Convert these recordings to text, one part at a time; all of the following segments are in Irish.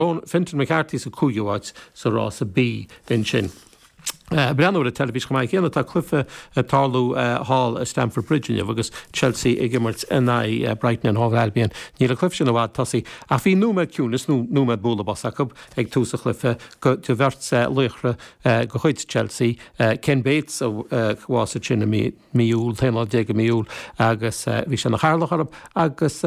Bhí Fintan McCarthy sa 5ú áit sa rása B ansin. Ag breathnú ar an teilifís chomh maith céanna tá cluiche ag tarlú thall i Stamford Bridge inniu agus Chelsea ag imirt in aghaidh Brighton and Hove Albion. Níl an cluiche sin i bhfad tosaigh ach bhí nóiméad ciúnais nó nóiméad bualadh bos acu ag tús an chluiche do bheirt laoch de chuid Chelsea, Ken Bates a bhásaigh sin i mí Iúil, t-aon lá déag i mí Iúil agus bhí sé ina chathaoirleach orthu agus.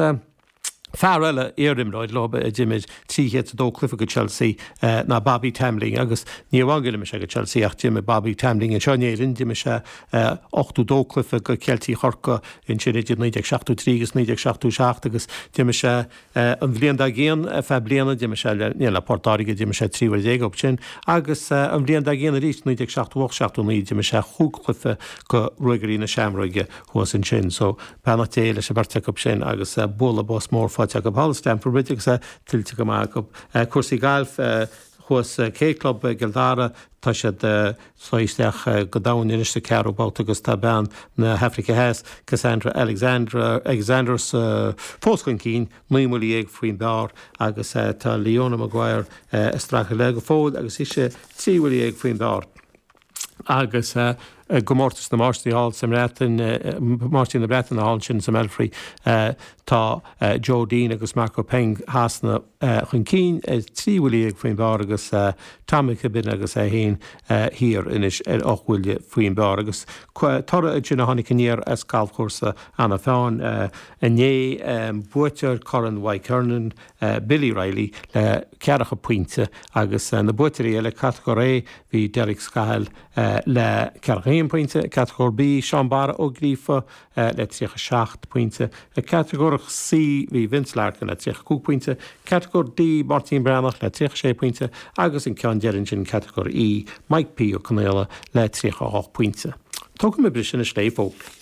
Fear eile, iar-imreoir leo a d'imir 302 cluiche do Chelsea, ná Bobby Tambling agus ní amháin go d'imir sé do Chelsea ach d'imir Bobby Tambling anseo in Éirinn, d'imir sé 82 cluiche do Cheiltigh Chorcaí ansin idir 1973 agus 1977 agus d'imir sé an bhliain dár gcionn ar feadh bliana, d'imir sé le, ní, le Port Láirge, d'imir sé trí uair déag acu sin agus an bhliain dár gcionn arís 1978 79 d'imir sé chúig chluiche do Ruagairí na Seamróige thuas ansin. So. Beannacht Dé leis an bheirt acu sin agus bualadh bos mór faighte acu thall i Stamford Bridge agus é tuillte go maith acu. Cúrsaí gailf thuas sa K Club i gCill Dara. Tá siad siad isteach go domhain anois sa 4ú babhta agus tá bean na hAifrice Theas, Casandra Alexander fós chun cinn, naoi mbuillí dhéag faoin bpar agus tá Leona Maguire ag streachailt léi go fóill agus ise trí bhuille dhéag faoin bpar. agus i gComórtas na Máistrí thall sa mBreatain, Máistrí na Breataine thall ansin sa mBelfry, tá Joe Dean agus Marco Penge Shasana chun cinn, trí bhuille dhéag faoin bpar agus Tom McKibbin agus é féin thiar anois ar ocht mbuille faoin bpar. Agus toradh ansin a tháinig aniar as galfchúrsa Eanach Mheáin inné, buaiteoir Chorn Mhic Thiarnáin, Billy Reilly le ceathracha pointe agus na buaiteoirí eile, Catagóir A, bhí Derek Scahill le ceathracha haon pointe, Catagóir B, Seán Barra Ó Gríofa le tríocha seacht pointe, Catagóir C, bhí Vince Larkin le tríocha cúig pointe, Catagóir D, Máirtín Breathnach le tríocha sé pointe agus an ceann deiridh ansin, Catagóir E, Mike P. Ó Conaola le tríocha hocht pointe. Tógfaidh muid briseadh anois le haghaidh fógraí.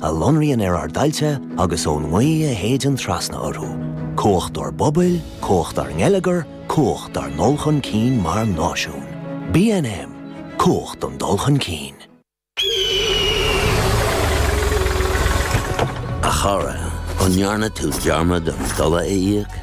a lonraíonn ar ár dtailte agus ón ngaoth a shéideann trasna orthu, cumhacht ár bpobail, cumhacht ár ngeilleagar, cumhacht ár ndul chun cinn mar náisiún. BnM, Cumhacht don dul chun cinn. A chara, an ndearna tú dearmad an dola a íoc?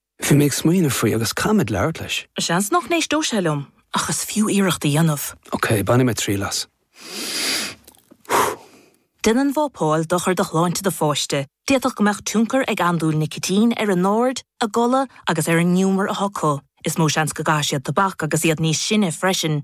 Bhí mé ag smaoineamh faoi agus caithfimid labhairt leis. Seans nach n-éisteodh sé liom ach is fiú iarracht a dhéanamh. Ok, bainfidh mé triail as. Déanann vapáil dochar do shláinte do pháiste, d'fhéadfadh go mbeadh tionchar ag andúil nicitín ar a n-aird, a gcodladh agus ar an ngiúmar atá acu. Is mó seans go gcaithfidh siad tobac agus iad níos sine freisin.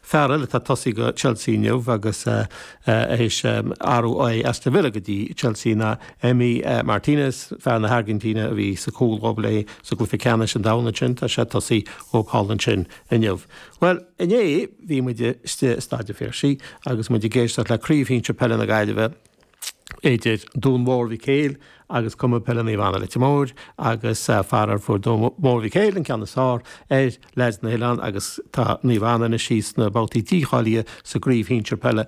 Farrell, atá ag tosaí go Chelsea inniu agus a théis athrú ó Aston Villa go dtí Chelsea ná Emi Martinez, fear na hAirgintíne a bhí sa cúl dhóibh leis sa gcluiche ceannais an domhain ansin, tá sé ag tosaí i gcúl ansin inniu. Bhuel, inné bhí muid istigh i Staid an Phiarsaigh agus muid i gceist le Craobh Shinsir Peile na Gaillimhe, idir Dún Mhór Mhic Éil agus Cumann Peile Naomh Anna Leitir Móir agus faraor fuair Dún Mhór Mhic Éil an ceann is fearr ar leaids na nOileán agus tá Naomh Anna anois síos sna babhtaí dícháilithe sa gcraobh shinsir peile